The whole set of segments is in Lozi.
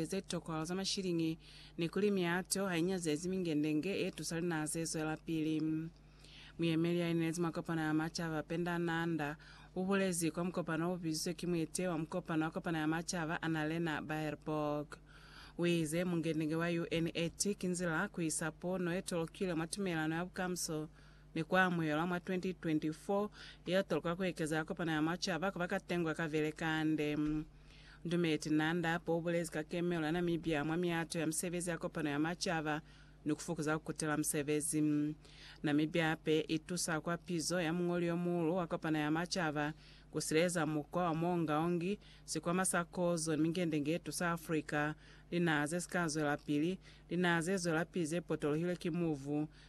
ze tokolo za mashiliñi ni kuli miato ha i nyazezi mingendenge ye tusa linaha ze zwelapili. Muyemeli ya inezi mwa kopano ya macaba, Penda Nanda, u bulezi kwa mukopano o bizizwe ki muete wa mukopano wa kopano ya macaba, Annalena Baerbock. U ize, Mungendenge wa UNET ki nzila ku isa pono ye tolokile mwa tumelano ya bukamuso ni ku amuhelwa mwa 2024 yeo toloka ku ekeza ya kopano ya macaba ku ba katengwa ka vele kande. Ndumeti Nanda Apo ubulezi ka kemelo ya Namibia mwa miato ya misebezi ya kopano ya macaba ni ku fukuza ku kutela musebezi. Namibia ape i tusa kwa pizo ya muñoli yo muulu wa kopano ya macaba ku sileleza mukwa wa muongaongi, sikwama sa kozo ni mingendenge ye tusa Africa, linaha ze si ka zwelapili, linaha ze zwelapili ze potolohilwe ki muvu,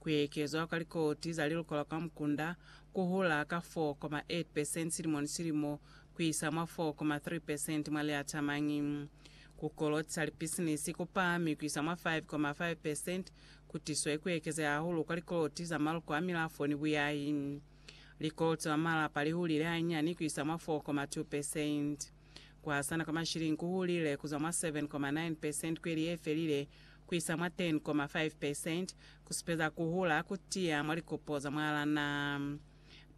Ku ekezwa kwa likoti za lilukolwa kwa mukunda ku hula ka 4,8 percent silimo ni silimo ku isa mwa 4,3 percent mwa liatamañi. Ku kolotisa lipisinisi ku pahami ku isa mwa 5,5 percent ku tiswe ku ekezeha hahulu kwa likoloti za maluko a milafo ni buyahi. Likoloti za malapa li hulile hanyinyani ku isa mwa 4,2 percent. Ku hasana kwa mashilingi ku hulile ku zwa mwa 7.9 percent kweli ye felile ku isa mwa 10.5 percent, ku supeza ku hula ku tiya mwa likopo za mwalaa naa.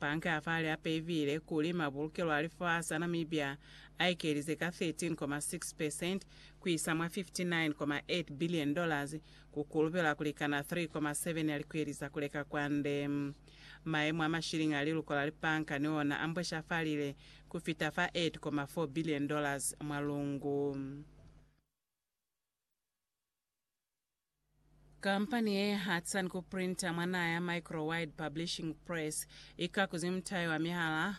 Banka ya fahali hape i viile kuli mabulukelo a lifasi a Namibia a ekelize ka 13.6 percent ku isa mwa 59.8 billion dollars, ku kulubela ku likana 3.7 ya likweli za ku leka kwande. Mayemo a mashilingi a liluko la libanka ni ona a mbweshafalile ku fita fa $8.4 billion mwa lungu. Kampani ye hatsani ku printa mwa naha ya Microwide Publishing Press i kakuzi mutayo wa mihala,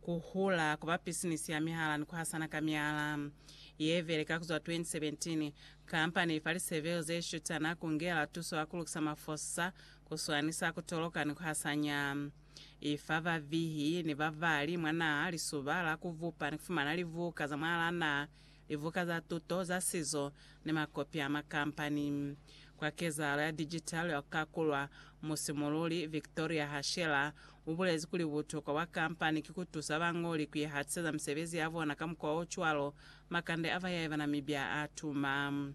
ku hula, ku ba pisinisi ya mihala ni ku hasana ka mihala. Ye beleka ku zwa 2017, kampani i fa liseveli ze shutana ku ngela tuso ya ku lukisa mafosa, ku swanisa, ku toloka ni ku hasanya. I fa bavihi ni babali mwa naha lisuba la ku bupa ni ku fumana libuka za mwalaa naha, libuka za tuto, za sizo, ni makopi a makampani. Kwa kezahalo ya digital ya ku kakulwa, musimululi Victoria Hashela u bulezi kuli butokwa bwa kampani ki ku tusa bañoli ku ihatiseza misebezi ya bona ka mukwa o cwalo, makande a bayae ba Namibia a tuma.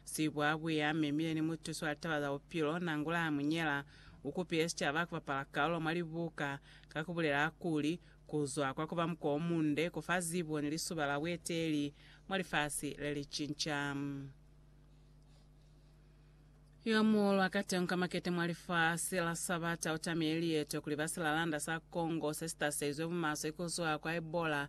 Sibwa buya memile ni mutusi wa litaba za bupilo, Nangula Hamunyela, ukupile sicaba kubapala kalulo mwa libuka ka kubulela kuli, Kuzwa kwa kuba muko omunde kufa zibo ni lisuba la bueteeli mwa lifasi lelicinca. Yomuulu akatenguka makete mwa lifasi la Sabata utamile lieto kuli basilaalanda sa Congo sesitaseizwe bumaswe kuzwa kwa Ebola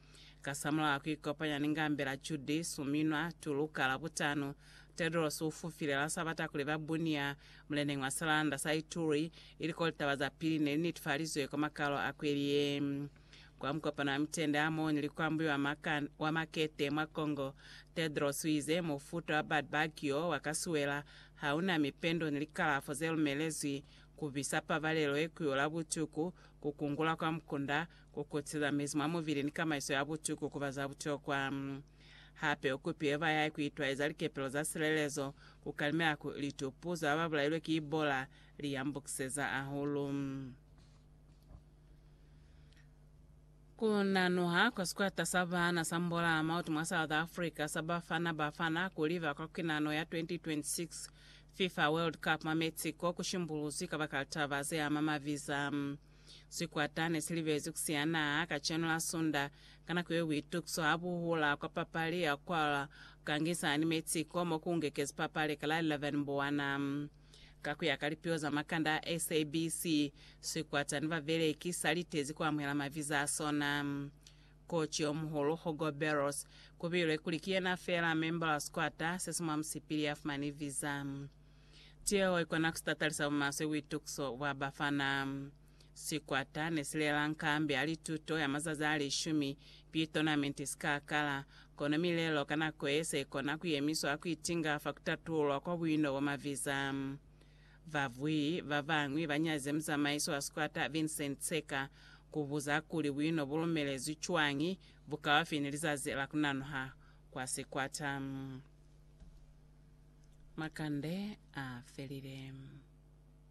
Kasamulaho kuikopanya ni ngambela Judy Suminwa Tulu ka Labutano, Tedros ufufile la Sabata kuli ba Bunia, muleneñi wa silanda sa Ituri, ili ko litaba za pili neli netifalizwe kwa makalo a kweli ye. Kwa mukopano wa mitende a moni li kwambuiwa maka wa makete mwa Congo, Tedros uize mufuta wa Badbug yo wa kasuela hauna mipendo ni likalafo zelumelezwi, kubisa pabalelo ye kuyola butuku, kukungula kwa mukunda, Ku kutisa mezi mwa mubili ni kamaiso ya butuku ku ba za butokwa. Hape u kupile bayahi ku itwaeza likepelo za silelezo, ku kalimela ku litupu za ba ba bulailwe ki Ebola, li yambukiseza hahulu. Ku nanuha kwa sikwata sa baana sa Mbolaa Mautu mwa South Africa sa Bafana Bafana ku liba kwa kwinano ya 2026 FIFA World Cup mwa Mexico ku shimbuluzwi kabakala taba ze ama maviza. Sikwata ne si libezi ku siana kacenu la Sunda. Ka nako yeo buitukiso ha bu hula kwa papali ya Quail Gangisa ni Mexico mo ku ngekezi papali ka la 11 Mbuwana. Ka ku ya ka lipio za makanda a SABC, sikwata ni babeleki sa litezi ku amuhela maviza a sona. Koci yo muhulu, Hugo Berros, ku bilwe kuli ki yena feela memba wa sikwata se si mwa musipili ya fumani viza. Tieho ikona kusitatalisa bumaswe buitukiso bwa bafana. Sikwata nesilela nkambi ya lituto ya mazazi alishumi pi tonamenti sikakala, kono milelo ka nako ye se ikona kuyemiswa ha kuitinga fa kutatululwa kwa buino bwa maviza. Babuyi babañwi banyazize muzamaisi wa sikwata Vincent Tseka kubuza kuli buino bulumelezwi cwañi bukaufi ni lizazi la kunanuha kwa sikwata. Makande a felile.